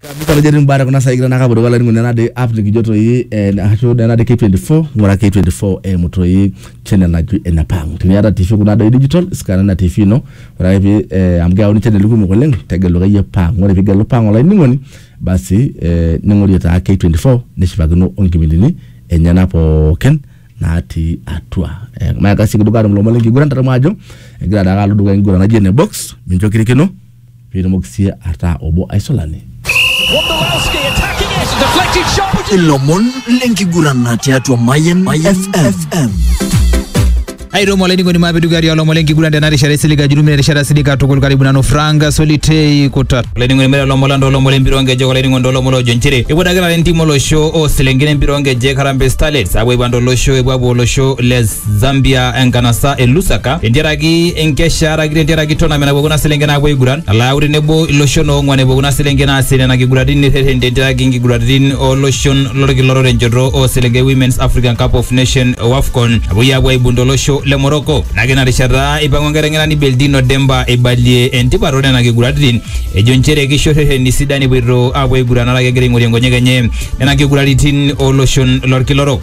Kabisa atejo etii mbaa kuna saai naa kapotoki olainining'oni ena de app nikijo toi eh, ashu ena de K24 ng'ura K24 eimu toi channel naji enepang. Teniata TV kuna doi digital scanner ina TV ino ore ake pee eh, amu keyauni channel kumok oleng tegelu akeyie pang. Ore pigelu pang olainining'oni basi eh, ning'orie taa K24 nishipakino onkipindini enyena pookin natii atua. Eh, maakasi kidogo atum ilomon lenkiguran tadamu ajo egira taake alo dukuya enkiguran naji ene box mincho kirikino. Pitumoki sii ataa obo aisulani. Wondolowski attacking it, deflected shot. Ilomon lenkigurana tiatua Mayan FM. Airemo olainining'oni maapidugari olomon lenkiguran tena rishata isilig ajulumina erishata silig katukul karibu nanu Frank Solitei Kutat. Olainining'oni mere olomon lang toolomon lempira onkejek olainining'oni toolomon loojo nchere epuo dakitari entim olosho oo selenken empira onkejek Harambee Starlets apuo aipang tolosho epuo apuo olosho le Zambia enkanasa e Lusaka tentiaraki enkesha araki tentiaraki tournament napuo kuna selenken naapuo aiguran nalo ayau tenebo iloshon oong'uan epuo kuna selenken aasie nena kiguraritin nirreten tentiaraki inkiguraritin oloshon lolkila orere enchoto oo selenken e Women's African Cup of Nation o Afcon napuoi aapuo aibung tolosho le Morocco. Ore ake ina rishata eipang'u enkiteng'enani Beldino Demba eibalie entipat oo nena kiguraritin ejo nchere keisho irrereni sidan epuoito aapuo aiguran araki egira aing'orie nkonyek enye nena kiguraritin oo loshon lolkila orok.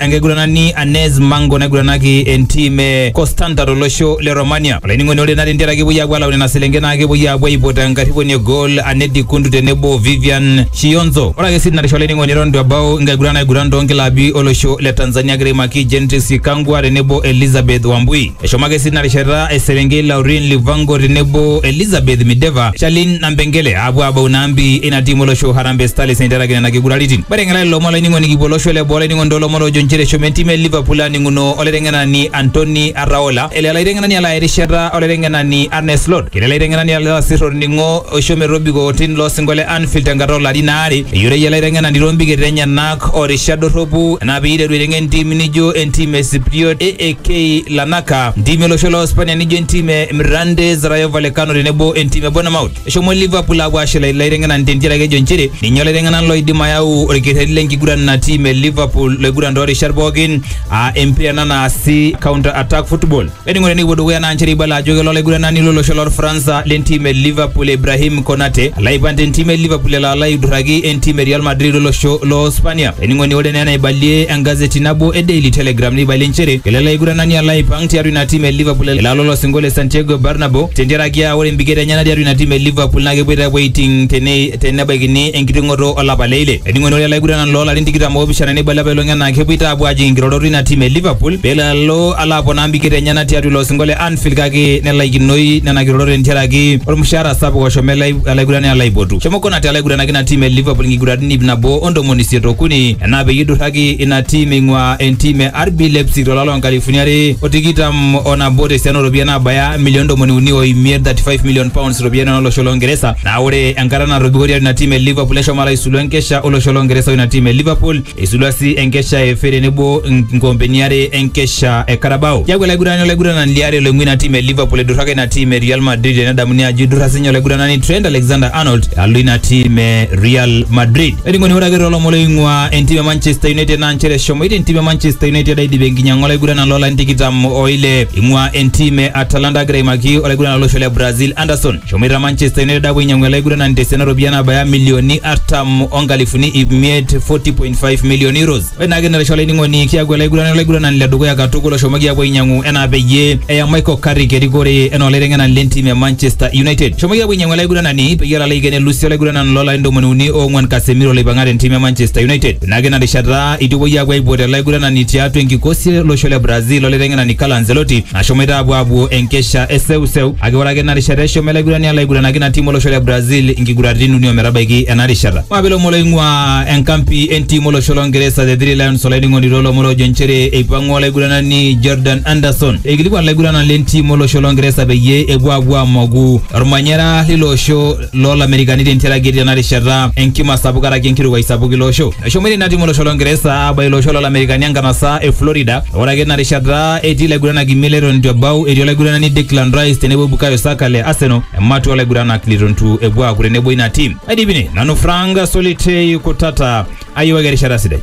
enkiguranani Anes Mango naiguranaki entim e Constanta tolosho le Romania. Olainining'oni ore naa tentiaraki epuoi aapuo alau nena selenken naa kepuoi aapuo aipot enkarriponi e goal Anne Dikundu tenebo o Vivian Shionzo. Ore ake sii tinarisha olainining'oni eton itu ebau nkiguran naiguran toonkilabi olosho le Tanzania egira aimaki Gentrix Ikangwa tenebo Elizabeth Wambui. Eshomo ake sii ina rishata eserenkei Laurin Livango tenebo Elizabeth Mideva, Charlene Nampengele aapuo aabau ina ambi ina tiim olosho Harambee Starlets eiteraki nena kiguraritin. Ore eng'ela lelo omon olainining'oni kipuo olosho le boo olainining'oni too lomon oojo nchere eshomo entim e Liverpool aaning'uno olaiteng'enani Antoni Arraola, ele olaiteng'enani alo aya erishata olaiteng'enani Arne Slot. Ketii olaiteng'enani alo asir olning'o oisho metobiko otim loo sinko le Anfield tenkata oo larin aare. Eyioloi ele aiteng'enani too mbiket enyena. orishat dorropu na piiteru aiteng entim nijo entim e Sipriot AAK Lanaka, ntimi olosho loo Spania nijo entim e Mirandés, Rayo Vallecano tenebo entim e Bournemouth. Eshomo Liverpool apuo ashula ilaiteng'enan tentiaraki ejo nchere ninye olaiteng'enan loidim ayau olkerreti lenkiguran ina tim e Liverpool loiguran toorishat pookin aa empira ena naasi counter attack football. Eningo tenikipuo dukuya naa nchere ibala ajo kelo olaiguranani lolosho lorfransa lentim e Liverpool Ibrahim Konate alo aipang tentim e Liverpool elo alo aidurraki entim e Real Madrid olosho loo Spania. Ening'oni ore naa enaibalie engazeti nabo e Daily Telegraph neibalie nchere kelo ele aiguranani alo aipang tiatua ina tim e Liverpool elo alo olosinko le Santiago Bernabeu tentiaraki aa ore impiket enyena tiatua ina tim e Liverpool naa kepuoita apuo aiting tene tenebaikini enkiting'oto olapa le ile. Ening'oni ore ele aiguranani loo larin tikitam oopishana neibala apailong enaa kepuoita apuo ajing inkirorot ina tim e Liverpool pelo alo alo aponaa mbiketa enyena tiatua ilo osingo le Anfield kake nelaikinoi nena kirorot tentiaraki olmushaara sapuk oshomo ele alaigurani alo aipotu. Shomo Konate alo aiguranaki ina tim e Liverpool nkiguratin iip nabo o ntomoni isiet o kuni enaa peyie eiduraki ina tim eing'uaa entim e RB Leipzig to lari loo nkalifuni are o tikitam o nabo te siana oo ropiyiani naabaya milioni ntomoni uni o imiet, £35 million, iropiyiani oo losho loo Ngeresa. Naa ore enkata natobiko tiatua ina tim e Liverpool neshomo alo aisulu enkesha o losho loo Ngeresa o ina tim e Liverpool. Eisulua sii enkesha e FA tenebo nkoompeni are enkesha e Carabao. Keaku olaigurani olaiguranani liare loing'ua ina tim e Liverpool eiduraka ina tim e Real Madrid tenedamuni ajo eidurra sinye olaiguranani Trent Alexander-Arnold alo ina tim e Real Madrid. Olainining'oni ore ake toolomon oing'ua entim e Manchester United naa nchere eshomoita entim e Manchester United aidip enkinyang'a olaiguranani loolarin tikitam o ile eing'ua entim e Atalanta agira aimaki olaiguranani lolosho le Brazil Anderson. Eshomoita Manchester United apuo ainyiang'u ele aiguranani tesiana ooropiyiani naabaya milioni artam onkalifuni ip miet 40.5 million euros. Ore naake ina rishata olainining'oni kiaku ele aiguranani olaiguranani le dukuya katukul oshomoki apuo ainyiang'u enaa peyie eya Michael Carrick erikore enaa olaiteng'enani le ntim e Manchester United. Eshomoki apuo ainyiang'u ele aiguranani peyie elo aiken elusi olaiguranani loo larin ntomoni uni oong'uan Casemiro loipang'a te ntim e Manchester United. Ore naake ina rishata eitu epuoi apuo aipot ele aiguranani tiatua enkikosi e losho le Brazil olaiteng'enani Carlo Ancelotti Nashomoita apuo apuo enkesha e seuseu kake ore ake ina rishata eshomo ele aigurani alo aiguranaki ina tim olosho le Brazil inkiguraritin uni ometabaiki ena rishata. Maape ilomon loing'ua enkampi entim olosho lo Ngeresa The Three Lions olainining'oni too lomon oojo nchere eipang'ua olaiguranani Jordan Anderson eikilikuan ilaiguranak le ntim olosho lo Ngeresa peyie epuo apuo amoku olmanyara leilo osho loo Lamerikani tentiaraki etii ena rishata enkima sapuk karaki enkirukai sapuk ilo osho. Eshomoita ina tim olosho Longeresa aabaiki ilo osho loo Lamerikani enkanasa e Florida ore ake ina rishata etii laiguranak imiet leton eitu ebau etii olaiguranani Declan Rice tenebo Bukayo Saka le Arsenal ematua oo laiguranak leitu ntu epuo aaku tenebo ina tim. Aidipi ine nanu Frank Solitei Kutata ayiewaki erishata sidai.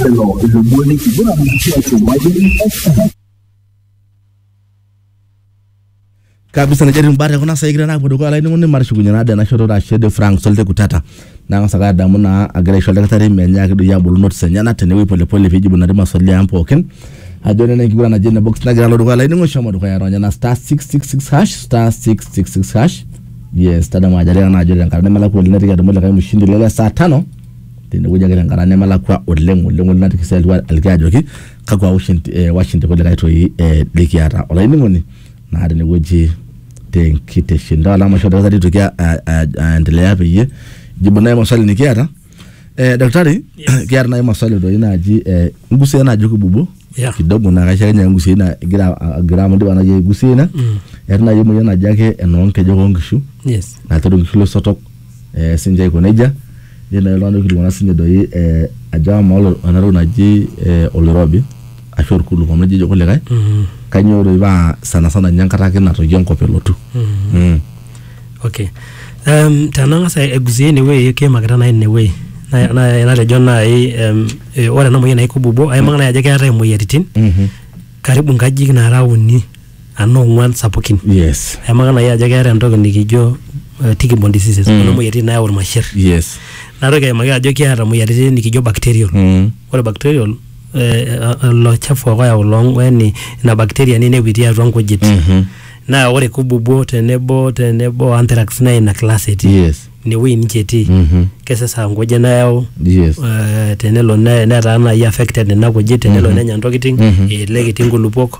Lelo ilomon lenkiguran tiatua Mayian FM. kabisa najua timbaa tekuna saai kigira naa apuo dukuya olainining'oni matushukunye naa tena shoto ashe de Frank Solte Kutata nang'as ake adamu naa agira aisho oldakitari menyaaki doi abolu notes enyena tenewuei polepole piijibu nena maswali ang pookin ajo nena enkiguran naji ene box nagira alo dukuya olainining'oni shomo dukuya ronya ina star 666 hash star 666 hash yes tadamu ajo atiaka naa ajo tenkata nemelakua oleng naitoki adumu likae mshindi lele saa tano tenewueji ake tenkata nemelakua oleng oleng oleng natikisa aliki ajoki kakwa ushindi, eh, washindi kulikae toi eh, likiata olainining'oni naa tenewueji tenkitesheni taa alama isho dakitari itoki a- a- a- aendelea peyie jibu naye maswali nikiata eh, daktari Yes. kiata naye maswali toi naaji eh, ngusia naaji kibubu Yeah. kidogo naa kaisho akenye ngusia ina igira agira amu indipa naaji aigusia ina eeta naaji emoyian naji ake enoonkejek oonkishu yes naitodol nkishu losotok eh, sinche aiko nejia netii naaji iltung'anak oikilikuana sinche doi eh, ajo amaa olo- ena toki naji eh, oloirobi ashu orkuluk amu ejo kulikae kanyoo doi paa sana sana ninye enkata ake natoyio enkop elotu Mm. okay um, tenang'as aigusie inewueji kiimakita nai inewueji Na- na- natejo nai um, eh, ore ena moyian naikububuo aimaka nai ajo keetae imoyiaritin Mhm. karibu nkajijik naara uni anaa ong'uan sapukin yes aimaka nai ajo keeta entoki nikijo uh, tickborne diseases mm. kuna moyiaritin nayau irmasher yes natoki aimaki ajo kiata moyiaritin nikijo bacterial mm. ore bacterial eh, ilo chafu ake oyau loo yani ina bacteria ninepu itii atua nkujit Mhm. naa ore kububuo tenebo tenebo anthrax naa ina class etii yes inewueji ninche etii Mhm. kesesa nkujit nayau yes eh, tenelo ne- netaa nai affected nena kujit tenelo nenya ntokitin elelek etii nkulupuok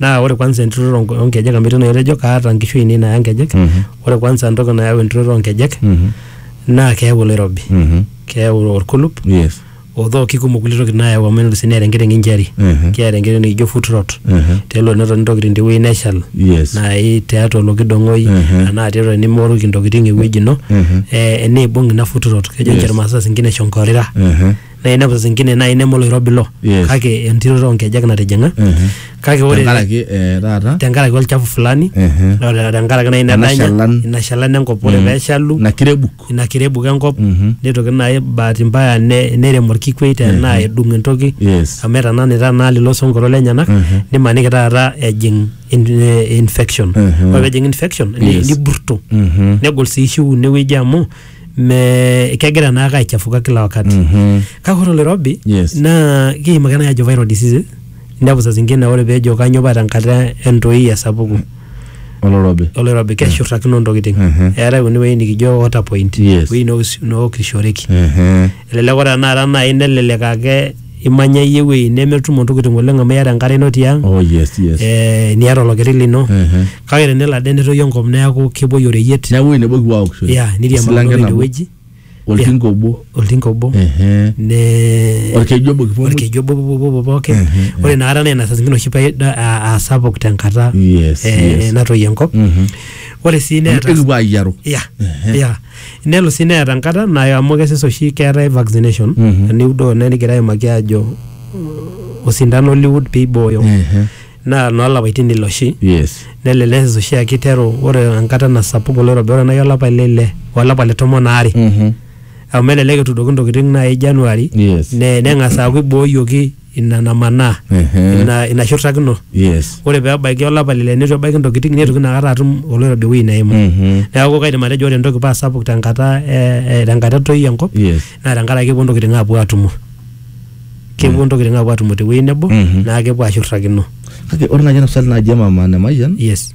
naa ore kwanza enturoto onk- oonkejek amu etii naa etejo kaata nkishu ainei naaya nkejek Mhm. ore kwanza entoki nayau enturoto oonkejek Mhm. naa keyau oloirobi Mhm. keyau orkulup Yes. odhoo kikumok kulie tokitin naayau amu enoto sii neeta enkiteng injury Mhm. keeta enkiteng nikijo foot rot Mhm. telo netoni ntokitin tewueji neshal Yes. naai tiatua olokidong'oi Mhm. anaa tiatua nimooruki ntokitin ewueji ino Mhm. eh, neibung ina foot rot kejo Yes. ninche irmaasai saa zingine eshonkorira Mhm. na inepu zingine nai neme oloirobi ilo Yes. kake entiroto onkejek natijinga Mhm. kake ore tenkaraki eh, taata tenkaraki olchafu fulani Mhm. na ore tenkaraki nai Ena nedanya shalan. ina shalan enkop ore peshalu na kirebuk ina kirebuk enkop Mhm. nitoki nai bahati mbaya ne- nerem orkikwei tenaa edung entoki yes amu etananita naa lilo sonkoro lenyenak Mhm. nimaniki taata ejing in- eh, infection Mhm. ore pejing infection ni- Yes. niburto Mhm. negol sii shiu inewueji amu me kegira naake aichafuka kila wakati Mhm. kake ore oloirobi Yes. naa kiim ake nai ajo viral diseases inepu saa zingine ore peejo kanyoo paa tenkata entoi esapuku olorobi oloirobi keshurrakino ntokiting Mhm. eetae kuna wueji nikijo water point Yes. wueji noos- nookishoreki Mhm. elelek ore tenakata nai nelelek ake imanya iyie ewueji nemetumo ntokitin oleng amu iyata enkare ino tiang Oh, yes, yes. eh, niata olokeri lino Ehe. kake tenelo ade netoyu enkop neeku kepuoi oreyiet Neeku ewueji nebo kipuo aokishore. ya Esilanke niriamakino nabo, inewueji Oltinka obo. oltinka obo Ehe. ne Olkeju obo kipuo muj. olkeju obo pupupupu pookin Ehe, ore inakata naa ina saa zingine oshi paa ida- aa- aa sapuk tenkata Yes, eh, yes. natoyio enkop Mhm. ore sii neeta Ekipuo ayiaru. ya ya nelo sii neeta enkata nayo amu kesesh oshi keetae vaccination Mhm. eniudoo naa nikigira aimaki aajo uh, osindano liud peibooyo Ehe. naa noolapaitin ile oshi yes nelelek neses oshi aa kiteru ore enkata nasapuku oloirobi ore nai olapa le ile olapa le tomon aare Mhm. amu elelek etuudoki ntokitin nai January Yes. ne- neng'as aaku ibooyioki ina namanaa Ehe. ina, ina shurtakino yes ore pee ebaiki olapa lile neitu ebaiki ntokitin neitoki inakata atum oloirobi ewueji neimu Mhm. neeku kaidim atejo ore entoki paa sapuk tenkata eh, eh, tenkata etoi enkop yes naa tenkaraki kepuo ntokitin aapuo atumo kepuo ntokitin aapuo atumo tewueji nebo Mhm. naa kepuo ashurtakino kake ore naaji ena swali naaji emama nemayian yes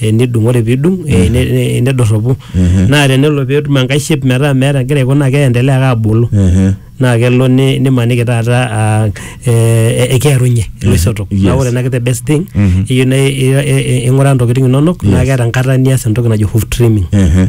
eh, nidung ore pidung eh, ne- ne- nedorropu naa tenelo petum enkae shape metaa meeta egira aiko naa keendelea ake abulu Ehe. naa kelo ni- nimaniki taata ah, eh, eh, ekearunye iloisotok Yes. naa ore ena kete best thing eyieu na i- i- i- ing'uraa ntokitin inonok naa keeta enkata nias entoki najo hoof trimming Ehe.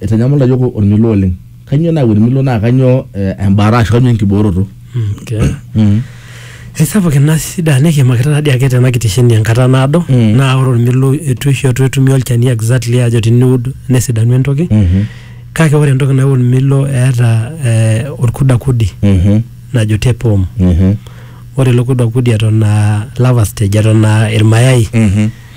Eitanyamal iyiook olmilo oleng. Kainyioo nayau olmilo naa kainyioo embaata ashu kainyioo enkibooroto. Eisapuk ina shida nikiimakita taadii ake tena kitesheni enkata naado naa ore olmilo eitu oshi etumi olchani exactly ajo teniud nesidanu entoki. Kake ore entoki nayau olmilo eeta olkudakudi najo tape worm. Ore ilo kudakudi eton aa larva stage eton aa ilmayai.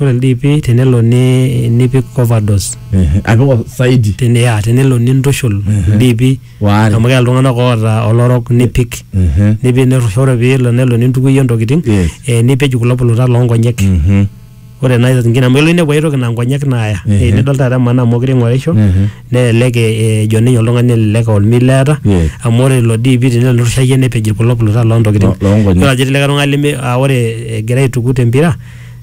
ore ildiipi tenelo ni- nipik overdose Ehe, apik saidi tene ya tenelo nintushul ildiipi Waare. amu keya iltung'anak oota olorok nipik Ehe. nipik nirrusha ore piilo nelo nintukuyie intokitin Yes. eh, nipej kulo puluta loonkonyek Mhm. ore naa saa ingine amu elo ninepu aitoki naa nkonyek naaya Ehe. Eh, nidol taata emaana amu mokure ing'orisho Ehe. nelelek eh, ejo ninye oltung'ani elelek aa olmilo eeta Yes. amu ore ilo diipi tenelo nirrushayie nepej kulo puluta loontokitin Lo- loonkonye. Idol ajo etii likae tung'ani leme aa ore egira aituku tempira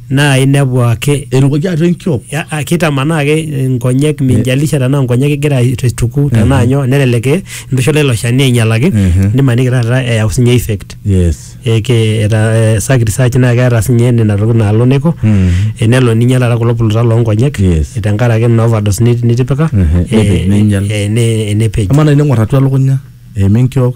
naa inepu ake erukoki atua enkiok ya- a- kitamanaa ake nkonyek minjalisha tenaa nkonyek igira aituku tenaa nyoo nelelek eh, intushula ilo shani ainyalaki Mhm. nimaniki taata eyau sinye effect yes eke eta eh, saki research naa keeta sinye nena tokitin naalo neiko Mhm. eh, nelo ninye taata kulo puluta loonkonyek Yes. eh, tenkaraki ina overdose nit- nitipika Mhm. eh, Nepej, neinyal. eh, ne- eh, nepej ama naa ining'or atua elukunya eima enkiok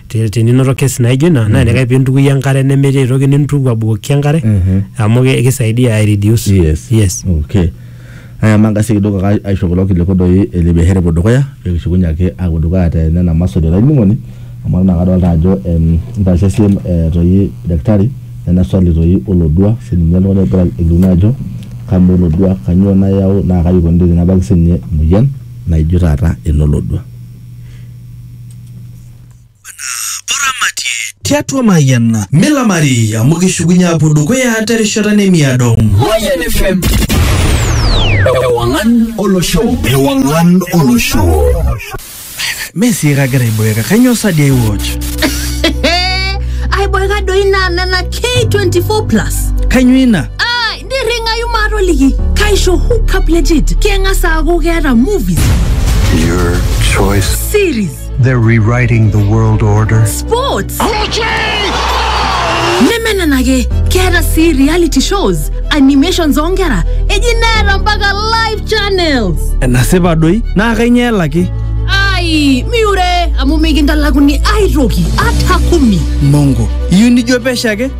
Te- teninoto kesi naijo ina naa enikae pintukui enkare nemetii aitoki nintuku abukoki enkare amu ki- kisaidia ai reduce Yes. yes Okay. Aya mangasi kidogo aka aisho kulo kiliku doi ele biashara epuo dukuya pee kishukunye ake aapuo dukuya te nena maswali olainining'oni amu ore naa kadolta ajo em, intaashe siem eh, toi daktari nena swali toi olodua sininye oltung'ani ogira alikino ajo kamaa olodua kanyoo nayau naa kaji ikoni tenebaki sininye emoyian naijo taata enolodua. tiatua Mayian milamari amu kishukunye apuo dukuya terishata nemiado. Mayian FM. Ewangan olosho. Ewangan olosho. Messi kagira aiboeka kanyoo sadi ai watch. aiboeka doi naa nena k24 plus Kanyoo ina? ai nirring'ayu maatoliki kaisho hookup legit keng'as aaku keeta movies Your choice. series They're rewriting the world order. Sports! nemenenake keeta sii reality shows animations oonkera eji neeta mpaka live channels enasipa doi naa kainyoo elaki ai miure amu mikintalakuni aitoki ata kumi mongo iyieu nijo pesho ake